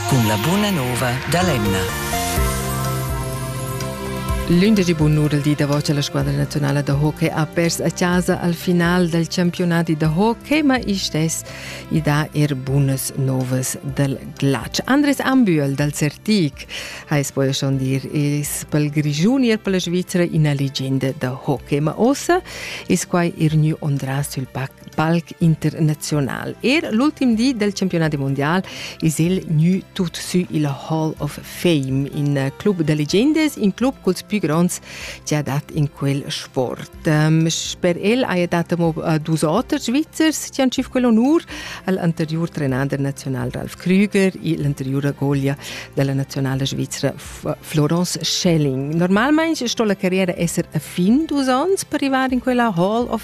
cun la buna nova dall'emna. L'indici bunnur il di davanti alla squadra nazionale da hockey ha perso a casa al final del campionati da hockey, ma istes i dà er bunas novas del glatsch. Andres Ambühl dal Certic ha espuoi schon dir es pel Grischun ir per la Svizzera ina legenda da hockey, ma ossa es quai er gnü ondrà sül pac palc internazional. Er l'ultim di del campionat mondial es el gnü tut sü il Hall of Fame, in club de legendes, in club culs più gronds che ha dat in quel sport. Ehm, sper el haja dat amo äh, dus oters Svizzers che han tschif quel onur al anteriur trenader nazional Ralf Krüger e l'anteriura goglia della nazionale svizzera Florence Schelling. Normalmein sto la carriera esser a fin dus ons per arrivare in quella Hall of